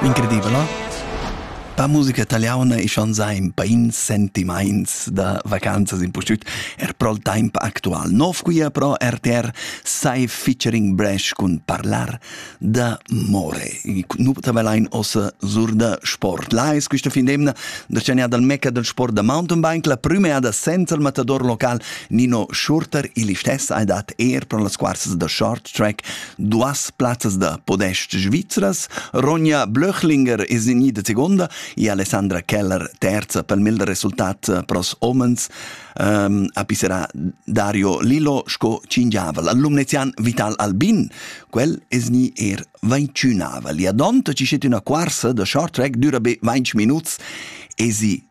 Incredibla? La musica italiana è schon sein bein sentimaints da vacanzas in pustüt er pro il temp actual nov quia pro RTR sai featuring Bresh cun parlar da more. Nu tabelain ossa sur da sport. Là es quista fin d'emna da tschanià dal meca del sport da mountainbike la prümeada senza il matador local Nino Schurter il istess ha dat er pro las quarsas da short track Duas plazzas da podest svizras, Ronja Blöchlinger es gnida segonda e Alessandra Keller terza pel mel resultat pros homens um, a pisserà Dario Lillo sco cingiavel. Al lumnezian Vital Albin, quel es gni er vainciunavel. E adonta ci schet üna quarsa da short track, düra be 20 minuts, e si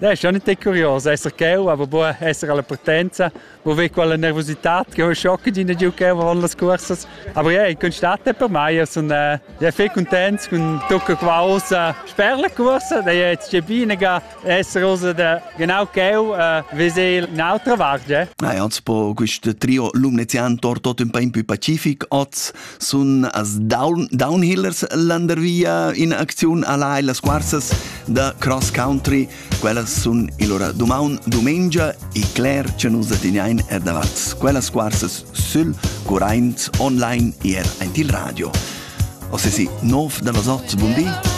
Dai, schon nicht curios esser cheu, aber buca esser alla potenza, wo vi quella nervosità che ho schocca di giù cheu avon las cursas. Aber ja, in constate per mai, sun äh, ja viel contents con tocca quaus äh, per la cursa, da jetzt che binaga esser usa da genau cheu, äh, wie sie un'altra vart, ja. Nein, also po questo trio Lumnezian torto un po' più pacific, oz sun as down, downhillers landervia in acziun alla e las quarzas da cross country. Quellas sun il ora dumaun, dumengia e cler che nus teniain er davat. Quellas quarzas sül curraint online e er aint il radio. O se si, nov da vasot, bun di!